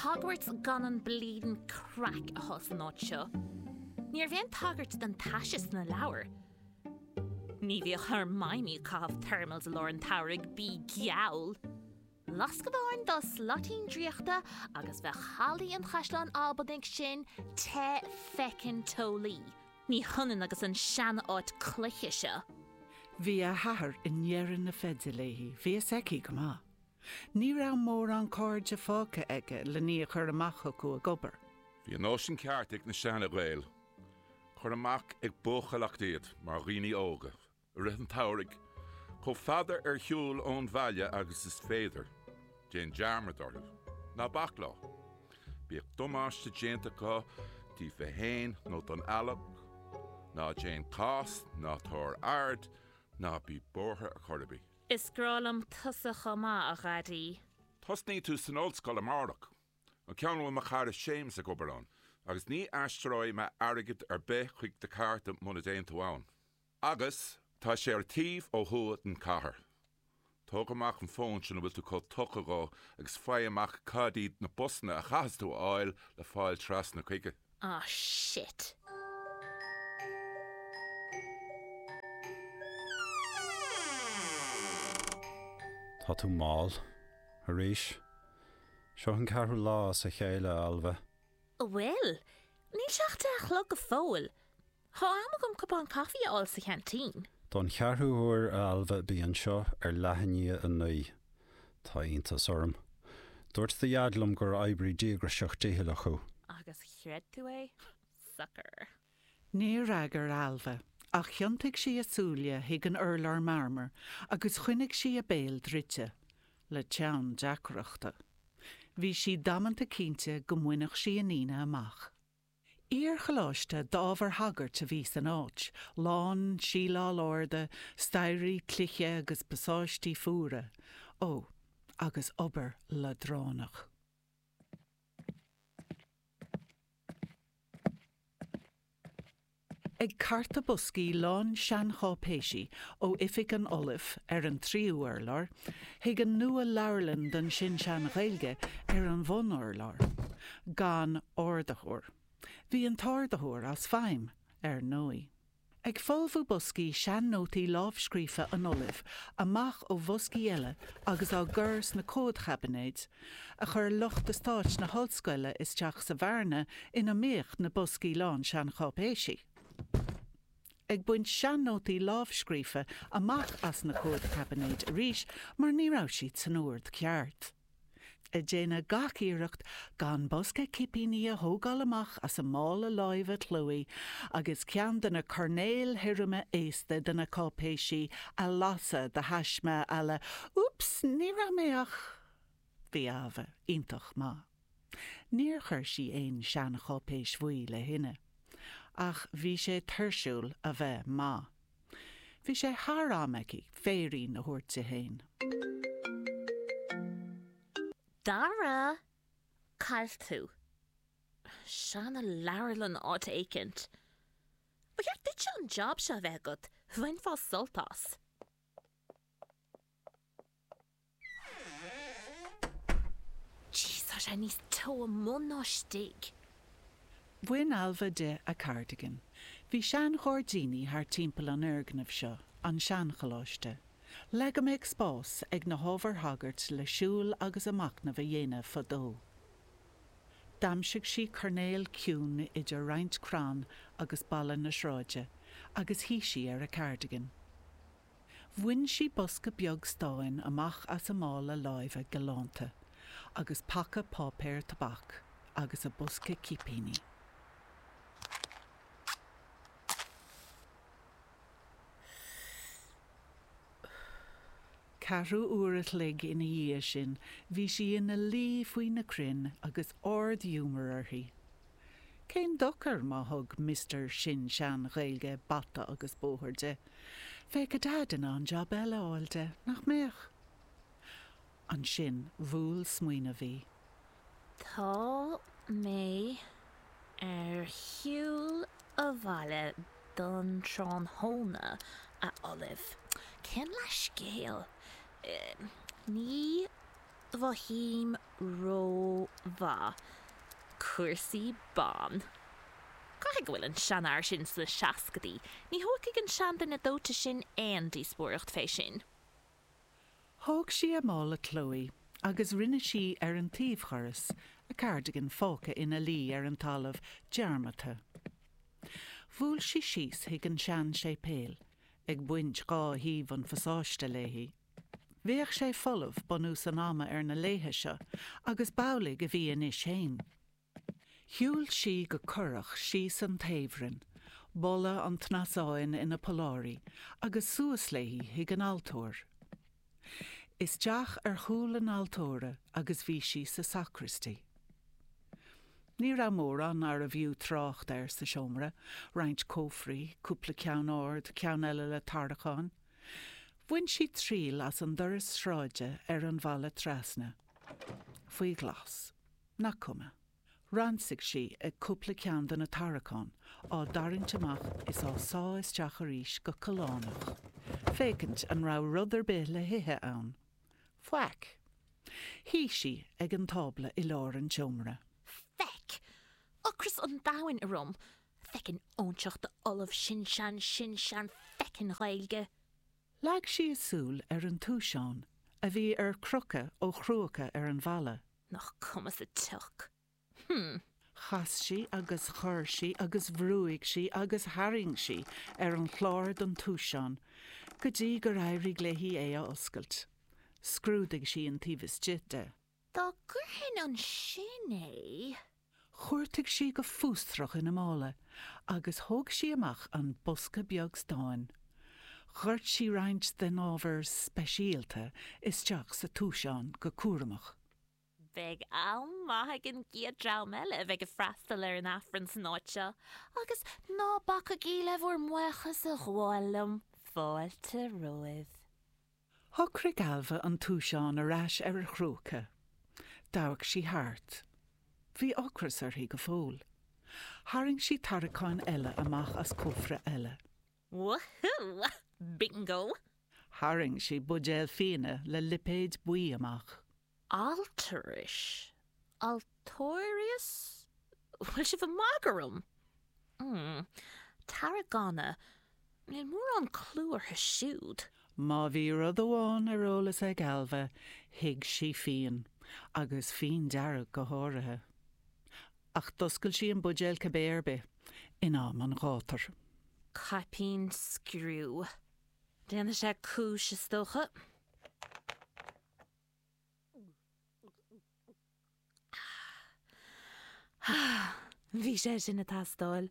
Hogwarts gan an bleedin craic a bhí an áit seo. Ní raibh aon tagairt don taise sna leabhair. Ní bhíodh Hermione ag caitheamh thermals i lár an tsamhraidh, bíodh geall! Lascadh amháin dá slaitín draíochta agus bheadh hallaí an Chaisleáin Albanaigh sin te feckin teolaí. Ní hionann agus an sean-áit cloiche seo. Bhí a hathair i ndeireadh na feide léi, bhí a fhios aici go maith. Ní raibh mórán cairde fágtha aige lena iníon a chur amach chucu ag obair. Bhí an nóisean ceart ag na seana-Ghaeil. Cuir amach ag buachailleacht iad mar dhaoine óga i rith an tsamhraidh, chomh fada ar shiúl ón bhaile agus ab fhéidir. Déan dearmad orthu. Ná bac leo. Bíodh damáiste déanta acu díobhtha fhéin nó don eallach. Ná déan cás, ná tabhair aird, ná bí buartha ar chor ar bith. Is grá liom tusa chomh maith, a Dhaidí. Tosnaidh tú san ollscoil amárach. An ceann a bhfuil mo chara Séamas ag obair ann. Agus ní aistreoidh mé airgead ar bith chuig do chárta muna dtéann tú ann. Agus tá sé ar an taobh ó thuaidh den chathair. Tóg amach an fón sin a bhfuil tú chomh tógtha dhó agus faigh amach cad iad na busanna a chaithfeas tú a fháil le fáil trasna chuige. Ah shit. Tá tú mall. Arís. Seo an ceathrú lá as a chéile, a Ailbhe. Bhuel, níl sé ach deich a chlog go fóill. Tá am agam cupán caifí a fháil sa cheaintín. Don cheathrú huair, a Ailbhe, bí anseo ar leath i ndiaidh a naoi. Tá iontas orm. Dúirt do Dhaid liom gur oibrí díograiseach dícheallach thú. Agus chreid tú é? Sucker. Níor fhreagair Ailbhe, ach thiontaigh sí a súile chuig an urlár marmair agus choinnigh sí a béal druidte, le teann deacrachta. Bhí sí damanta cinnte go mbainfeadh sí a ndíoltas amach. Iar-choláiste d'ábhar sagairt a bhí san áit, lán síleáil arda, staighrí cloiche agus pasáistí fuara. Ó, agus obair leadránach. Ag cartadh boscaí lán seancháipéisí ó oifig an Ollaimh ar an tríú urlár, chuig an nua-Leabharlann don tSin-Sean-Ghaeilge ar an bhun-urlár, gan ardaitheoir. Bhí an t-ardaitheoir as feidhm, ar ndóigh. Ag folmhú boscaí sean-nótaí lámhscríofa an Ollaimh amach ó bhoscaí eile agus á gcur sna comhadchaibinéid, a chuir lucht eastáit na hollscoile isteach sa bhearna ina mbíodh na boscaí lán seancháipéisí. ag baint sean-nótaí lámhscríofa amach as na comhadchaibinéid arís mar ní raibh siad san ord ceart. Ag déanamh gach iarracht gan bosca cipíní a thógáil amach as a mála láimhe Chloé agus ceann de na coirnéil thirime aosta de na cáipéisí a lasadh de thaisme à la 'Úps, ní raibh mé ach. Bhí Ailbhe iontach maith. Níor chuir sí aon seancháipéis bhuí le thine. Ach bhí sé tuirsiúil a bheith maith. Bhí sé thar am aici féirín a thabhairt di féin. Dara, cá bhfuil tú? Seanleabharlann áit éicint. Ba cheart duitse an job seo a bheith agat, bhainfeá sult as. Bhí sé níos teo amuigh ná istigh. Bhain Ailbhe di a cardigan. Bhí seanghairdíní thart timpeall an fhoirgnimh seo, an seancholáiste. Le go mbeadh spás ag na hábhair shagairt le siúl agus a machnamh a dhéanamh fadó, d'aimsigh sí coirnéal ciúin idir roinnt crann agus balla na sráide agus shuigh sí ar a cardigan. Bhain sí bosca beag stáin amach as a mála láimhe galánta agus paca páipéir tobac agus a bosca cipíní. Ceathrú uair a chloig ina dhiaidh sin bhí sí ina luí faoi na crainn agus ard-ghiúmar uirthi. Cén dochar má thug Mister Sin-Sean-Ghaeilge bata agus bóthar di? Bheadh a Daid in ann jab eile a fháil di, nach mbeadh? Ansin bhuail smaoineamh í. Tá mé ar shiúl abhaile don tráthnóna, a Ollaimh. Cén leathscéal? Ní mhothaím rómhaith cúrsaí ban. Caithfidh go bhfuil an seanfhear sin sna seascadaí, ní thógfaidh an seanduine dóite sin aon díospóireacht fé sin. Thóg sí a mála Chloé agus rinne sí ar an taobhdhoras a cardigan fágtha ina luí ar an talamh dearmadta. Bhuail sí síos chuig an sean-séipéal, ag baint dhá thaobh an phasáiste léi. Bheadh sé folamh bunús an ama ar na laethe seo agus b'amhlaidh a bhí anois fhéin. Shiúil sí go corrach síos an taobhroinn, boladh an tsnasáin ina polláirí, agus suas léi chuig an altóir. Isteach ar chúl na haltóra agus bhí sí sa sacristy. Ní raibh mórán nárbh fhiú trácht air sa seomra, roinnt cófraí, cúpla ceann ard, ceann eile le tarraiceáin, Bhain sí triail as an doras sráide ar an Bhealach Trasna. Faoi ghlas. Nach cuma. Ransaigh sí ag cúpla ceann de na tarraiceáin, á dtarraingt amach is á sá isteach arís go callánach, féachaint an raibh rud ar bith le hithe ann. Faic. Shuigh sí ag an tábla i lár an tseomra. Faic. Ocras an domhain orm. feckin' óinseach d'ollamh sin-sean-sin-sean feckin' Ghaeilge! Leag sí a súil ar an túiseán a bhí ar crochadh ó chrúca ar an bhalla. Nach cuma sa tsioc. Hm. Chas sí agus chor sí agus bhrúigh sí agus tharraing sí ar an chlár den túiseán go dtí gur éirigh léi é a oscailt. Scrúdaigh sí an taobh istigh de. Dá gcuirfinn ansin é. Chuartaigh sí go fústrach ina mála agus thóg sí amach an bosca beag stáin. Dhoirt sí roinnt den ábhar speisialta isteach sa túiseán go cúramach. Beidh am maith ag an gcéad dream eile a bheidh ag freastal ar an Aifreann san áit seo, agus ná bacaigí le bhur mbuíochas a ghabháil liom, fáilte romhaibh. Shocraigh Ailbhe an túiseán ar ais ar a chrúca. D'amharc sí thart. Bhí ocras uirthi go fóill. Tharraing sí tarraiceáin eile amach as cófra eile. Woohoo! Bingo! Tharraing sí buidéal fíona le lipéad buí amach. Altaris? Altaris? Bhfuil sibh ag magadh orm? Mmm. Tarragona. Níl mórán clú orthu siúd. Má bhí rud amháin ar eolas ag Ailbhe, thuig sí fíon. Agus fíon dearg go háirithe. Ach d'oscail sí an buidéal cibé ar bith, in am an ghátair. Caipín scriú. Déanfaidh sé cúis, is dócha. Bhí sé sin ag teastáil.